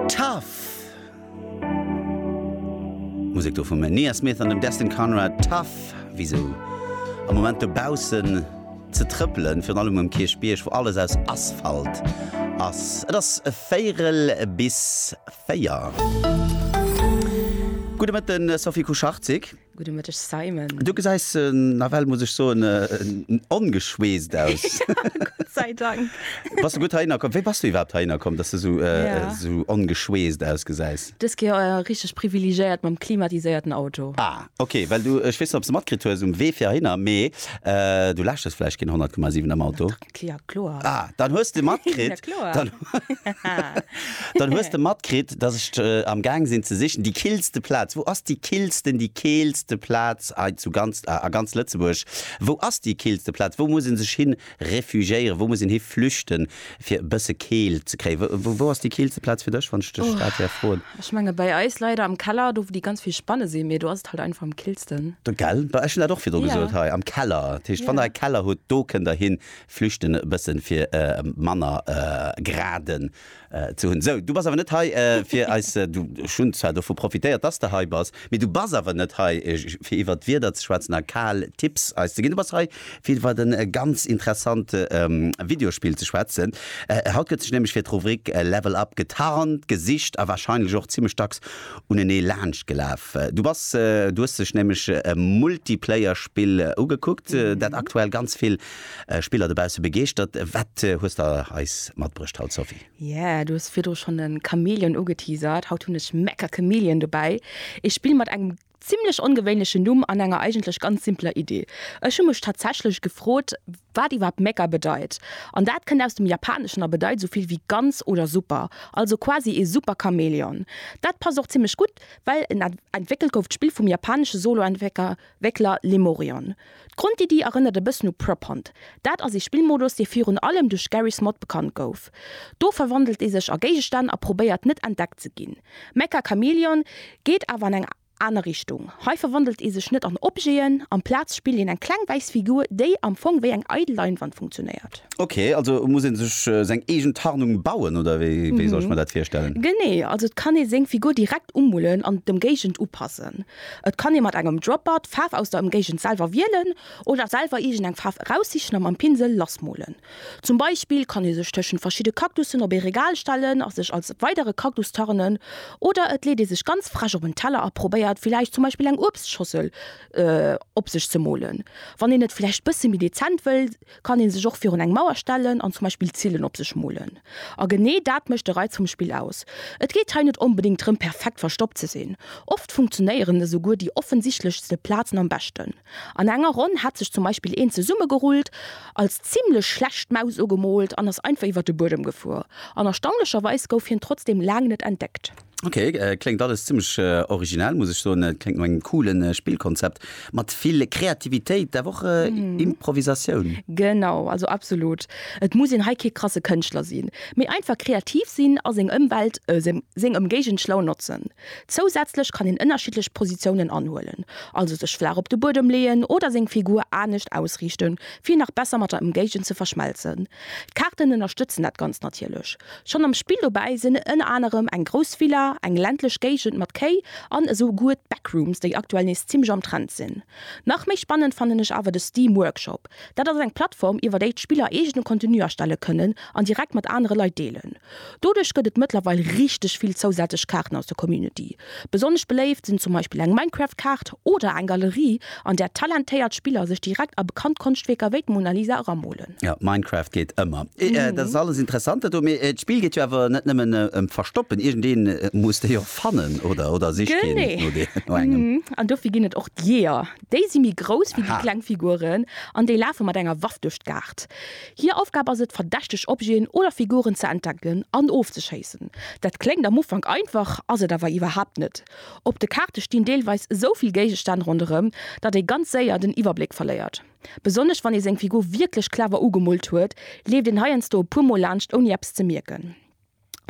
Tough! Musek do vum Nia Smith an dem Destin Conrad, Tough! Wéi sou am Moment dobaussen ze trëppelen, virun allem um Kierchbierg, wou alles aus Asphalt ass. Et ass véierel bis véier. Gudde Mëtten, Sophie Kucharczyk. Gudde Mëtteg Simon. Du gesäis nawell, muss ech soen, ongeschweesst aus. Gott sei Dank. Bass du gutt heihinner komm? Wéi bass du iwwerhaapt heihinner komm, dass du esou ongeschweesst ausgesäis? Dës Kéier richteg privilegéiert mam klimatiséierten Auto. Ah ok, well du, ech weess net ob s de matkritt hues um Wee fir heihinner, mee du lauschtes vläicht keen 100,7 am Auto. Klia kloer. Ah, dann hues de matkritt. ja kloer. Dann, dann hues de matkritt, dass ech äh, am Gang sinn ze sichen die killste Platz. Wo ass die killsten, die keelste Platz a zu ganz a, a ganz Lëtzebuerg? Wo ass die killste Platz? Wo muss een sech hin refugiéieren? Wo muss een hi flüchten fir e bësse Keel ze kréien? Wo, wo ass die killste Platz fir dech, wann ech dech dat wär froen? Ech menge bei eis leider am Keller, do wou déi ganz vill Spanne sinn, mee do ass et halt einfach am killsten. Gell, ech hunn dat och virdru gesot hei, am Keller. Dat heescht, wann der e Keller hutt, do kënnt der hin flüchten e bëssen, fir e manner graden ze hunn. Sou, du bass awer net hei fir eis, du, ech hunn zwar dovu profitéiert, dass de hei bass, mee du bass awer net hei fir iwwert d'Wieder ze schwätzen a kal Tipps eis ze ginn. Du bass hei Vill wat en ganz interessante Videospill ze schwätzen. Haut gëtt sech nämlech fir d'Rubrik Level Up getarnt, gesicht a wahrscheinlech och zimlech dacks unenee laanscht gelaf. Du bass, du hues dech nämlech e Multiplayer-Spill ugekuckt, dat aktuell ganz vill Spiller dobausse begeeschtert. Wat hues de eis matbruecht haut, Sophie? Yeah, du hues virdru schonn de Chameleon ugeteasert. Haut hunn ech Mecha Chameleon dobäi, ee Spill mat engem Zimlech ongewéinlechen Numm an enger eigentlech ganz simpeler Idee. Ech hu mech tatsächlech gefrot, wat iwwerhaapt Mega bedeit. An dat kënnt aus dem Japaneschen a bedeit esou vill wéi ganz oder super. Also quasi ee Super-Chamäleon. Dat passt och zimlech gutt, well en entwéckelt gouf, d'Spill vum japanesche Solo-Entwéckler Lemurion. D'Grondiddi erënnert e bëssen u Prop Hunt. Dat ass ee Spillmodus, dee virun allem duerch Garry's Mod bekannt gouf. Do verwandelt ee sech a Géigestänn a probéiert net entdeckt ze ginn. Mecha Chameleon geet awer an eng aner Richtung. Hei verwandelt ee sech net an Objeten, amplaz spillt een eng kleng wäiss Figur, déi am Fong wéi eng eidel Leinwand funktionéiert. Ok, also muss een sech seng eegen Tarnung bauen, oder wéi soll ech mer dat virstellen? Genee, also et kann ee seng Figur direkt umullen an d'Ëmgéigend upassen. Et kann ee mat engem Dropper d'Faarf aus der Ëmgéigend selwer wielen oder selwer iergend eng Faarf eraussichen a mam Pinsel lassmolen. Zum Beispill kann ee sech tëschent verschidde Kaktussen op ee Regal stellen a sech als weidere Kaktus tarnen. Oder et leet ee sech ganz frech op en Teller a probéiert villäicht zum Beispill eng Uebstschossel op sech ze molen. Wann een et villäicht bësse méi dezent wëll, kann ee sech och virun eng Mauer stellen an zum Beispill Zillen op sech molen. A genee dat mécht de Reiz vum Spill aus. Et geet hei net onbedéngt drëm perfekt verstoppt ze sinn. Oft funktionéieren esouguer déi offensichtlechste Plazen am beschten. An enger Ronn hat sech zum Beispill een zesummegerullt, als zimmlech schlecht Maus ugemoolt an ass einfach iwwert de Buedem gefuer. An erstaunlecherweis gouf hien trotzdeem laang net entdeckt. Ok, kléngt alles zimmlech originell muss ech soen. Kléngt no engem coolen Spillkonzept mat vill Kreativitéit awer och Improvisatioun. Genau, also absolut. Et muss een hei kee krasse Kënschtler sinn, mee einfach kreativ sinn a seng Ëmwelt, seng Ëmgéigend schlau notzen. Zousätzlech kann een ënnerschiddlech Positiounen anhuelen, also sech flaach op de Buedem leeën oder seng Figur anescht ausriichten, fir nach besser mat der Ëmgéigend ze verschmelzen. D'Kaarten ënnerstëtzen dat Ganzt natierlech. Schonn am Spill dobäi sinn ënner anerem eng grouss Villa, eng ländlech Géigend mat Kéi an esou guer d'Backrooms, déi aktuell nees zimmlech am Trend sinn. Nach méi spannend fannen ech awer de Steam Workshop. Dat ass eng Plattform, iwwer déi d'Spiller eegene Contenu erstelle kënnen an direkt mat anere Leit deelen. Doduerch gëtt et mëttlerweil richteg vill zousätzlech Kaarten aus der Community. Besonnesch beléift sinn zum Beispill eng Minecraft-Kaart oder eng Galerie, an där talentéiert Spiller sech direkt a bekannt Konschtwierker wéi d'Mona Lisa eramolen. Jo, Minecraft geet ëmmer. Dat ass alles interessant dat do, mee d'Spill geet jo awer net nëmmen ëm d'Verstoppen. Iergendee muss déi och fannen, oder? Oder sicht keen no engem? Genee. An dofir ginn et och d'Jeeër. Déi si méi grouss wéi déi kleng Figuren an déi lafe mat enger Waff duerch d'Kaart. Hir Aufgab ass et, verdächteg Objeten oder Figuren ze entdecken an ofzeschéissen. Dat kléngt am Ufank einfach, ass et awer iwwerhaapt net. Op de Kaarte stinn deelweis esou vill Géigestänn ronderëm, datt ee ganz séier den Iwwerbléck verléiert. Besonnesch wann ee seng Figur wierklech clever ugemoolt huet, leeft een heiansdo e puer Mol laanscht ouni eppes ze mierken.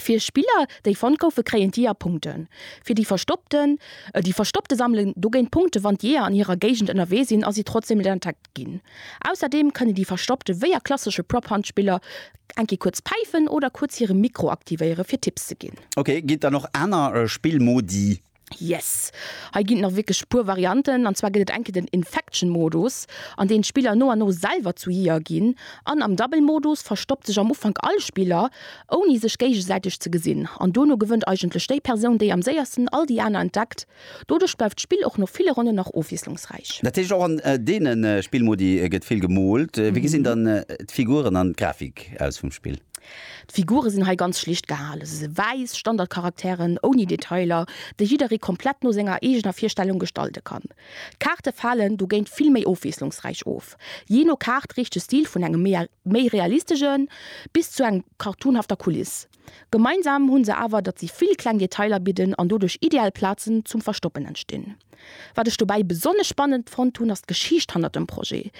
Fir Spiller déi fonnt goufen kréien d'Jeeër Punkten. Fir déi verstoppten, déi Verstoppte sammelen dogéint Punkten, wann d'Jeeër an hirer Géigend ënnerwee sinn a si trotzdeem net entdeckt ginn. Ausserdeem kënnen déi Verstoppte wéi a klassesche Prop Hunt Spiller eng Kéier kuerz päifen oder kuerz hire Mikro aktivéieren fir Tipps ze ginn. Ok, ginn et dann och aner Spillmodi? Yes! Hei ginn et nach wierklech e puer Varianten, an zwar gëtt et eng Kéier den Infection Modus, an deem d'Spiller no an no selwer zu Jeeër ginn, an am Double Modus verstoppt sech am Ufank all Spiller, ouni sech géigesäiteg ze gesinn, an dono gewënnt eigentlech déi Persoun, déi am séiersten all déi aner entdeckt. Doduerch bleift d'Spill och no ville Ronnen nach ofwiesslungsräich. Dat heescht, och an deene Spillmodi gëtt vill gemoolt. Wéi gesinn dann d'Figuren an d'Grafik aus vum Spill? D'Figure sinn hei ganz schlicht gehale, se si wäiss Standardcharakteren ouni Detailer, déi jidderee komplett no senger eegener Virstellung gestalte kann. D'Kaarte falen dogéint vill méi ofwiesslungsräich of. Jee no Kaart reecht de Stil vun engem méi realistesche bis zu eng cartoonhafter Kuliss. Gemeinsam hu se awer, datt si vill kleng Detailer bidden an doduerch ideal Plazen zum Verstoppen entstinn. Wat ech dobäi besonnesch spannend fonnt hunn, ass d'Geschicht hannert dem Projet.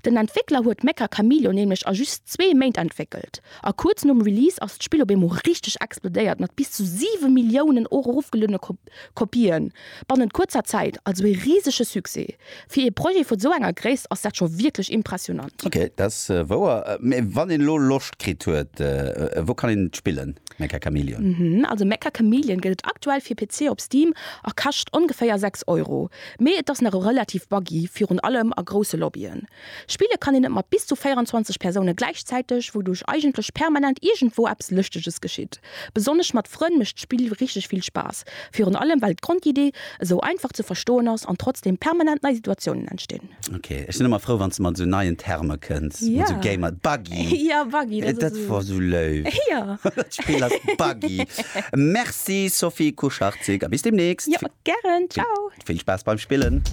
Den Entwéckler huet Mecha Chameleon nämlech a just zwee Méint entwéckelt, a kuerz nom Release ass d'Spill op eemol richteg explodéiert mat bis zu siwe Milliounen erofgeluedene Kopië bannent kuerzer Zäit. Also ee risege Succès. Fir ee Projet vu sou enger Gréisst ass dat scho wierklech impressionant. Ok, dat ass wouer. Mee wann een elo Loscht kritt huet, wou kann een et spillen? Mecha Chameleon. Also Mecha Chameleon gëtt et aktuell fir PC op Steam a kascht ongeféier 6 Euro. Mee et ass nach relativ buggy, virun allem a grousse Lobbyen. Spille kann een et mat bis zu 24 Persoune gläichzäiteg, wouduerch eigentlech permanent iergendwou eppes Lëschteges geschitt. Besonnesch mat Frënn mécht d'Spill richteg vill Spaass, virun allem well d'Grondidee esou einfach ze verstoen ass an trotzdeem permanent nei Situatiounen entstinn. Ok, ech sinn ëmmer frou wann s de mat esou neien Terme kënns, mat esou Gamer, Buggy. Ja Buggy, dat ass esou. Dat wor esou léif. Ja. Dat Spill ass Buggy. Merci Sophie Kuscharczyk a bis deemnächst. Jo, gären, ciao. Vill Spaass beim Spillen.